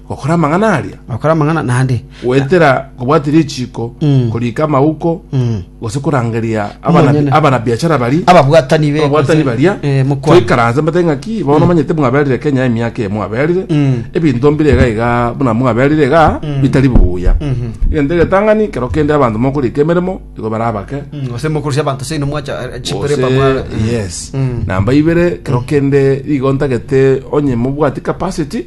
Gokora amang'ana aria, Gokora amang'ana naende. goetera kobwatia richiiko, Mm. koriika amauko, Mm. gose korangeria abana- Omonyene. abanabiachara baria Ababwatani be. ababwatani baria Eh, mokwana. toikaranse mbete ng'aki bono manyete mwaberire kenya emiaka emo aberire Mm. ebinto mbire iga iga buna mwaberire iga bitari buya egento egetang'ani kero kende abanto mokorika emeremo igo bare abake Mm, Gose mokurusia abanto seino mwacha eh, chipere Gose- pamwa. yes Mm. namba ibere kero kende igo ntagete onye mobwati capacity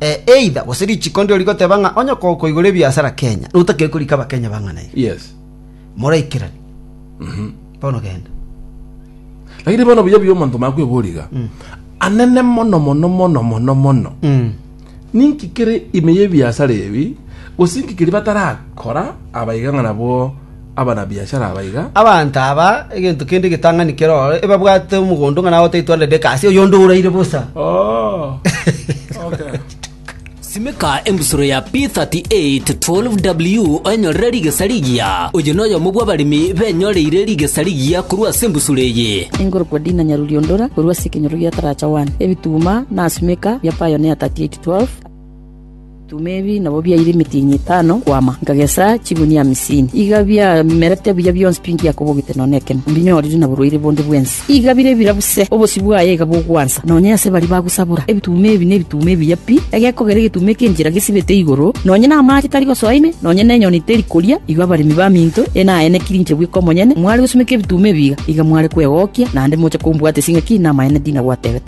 Eh, either gose richiko ndiro rigoteba ng'a onye ko- koigora ebiasara Kenya, notakire korika Abakenya bang'aneire. Yes. Moraikerani. Bono genda. Lakini bono buya buya omonto omanye kwebora iga. Anene mono mono mono mono mono. Mm. Ninki kere ime y'ebiasara ebi, gose inki keria batarakora abaiga ng'a nabwo abana-biashara aba iga. Abanto aba, egento kende getang'ani keroro, ebabwate omogondo ng'a nagotaitwa Rebeka ase oyonde oraire bosa. Simeka embusuro ya P38 12W oenyorere rigesa rigiya. Oyo noyomo bw'abaremi benyoreire rigesa rigiya korwa ase embusuro eye. Enkorokwa Dina Nyaruriondora korwa ase ekenyoro gia Taracha 1. Ebituma na Simeka bia Pioneer 38 12. Tuma ebi nabo biaire emetienyi etano kwama, nkagesa chigunia hamsini. Iga biamerete buya bionsi pi ngiakobogete nonya nekemo, mbinyorire na borwaire bonde bwensi. Iga bire bira buse, obosio bwaye iga bogwansa, nonya ase baria bagosabora. Ebituma ebi nebituma ebiya pi, egekogera egetuma eki'enchera gesibete igoro, nonya namaache tari gosoa ime, nonya nenyoni teri koria. Igo abaremi baminto ene aye nekirinche bweka omonyene, mware gosumeka ebituma ebi iga, iga mware kwegokia, naende moche kombwatisia ng'a ki namaene ndinagwatebete.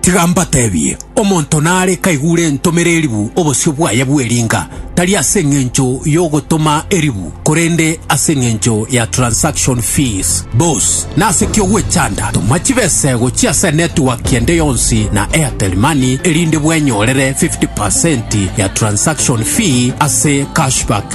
Tiga mbatebie, omonto nare kaigure entomera eribu obosio bwaye bw'eringa, tari ase engencho y'ogotoma eribu, korende ase engencho ya transaction fees. Boss, nase ki ogwechanda? Toma chibesego chi'ase network ende yonsi na Airtel Money erinde bwenyorere 50% ya transaction fee ase cashback.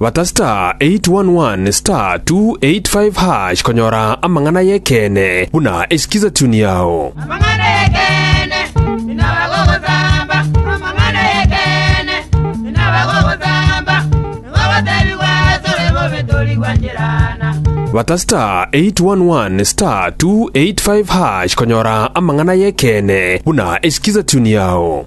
Bata *811*285# konyora amang'ana y'ekeene buna esikiza tuni yao. Amang'ana y'ekeene inaba gogosamba, amang'ana y'ekeene inaba gogosamba, nigo gotebigwa asore bobe tori gwancherana. Bata *811*285# konyora amang'ana y'ekeene buna esikiza tuni yao.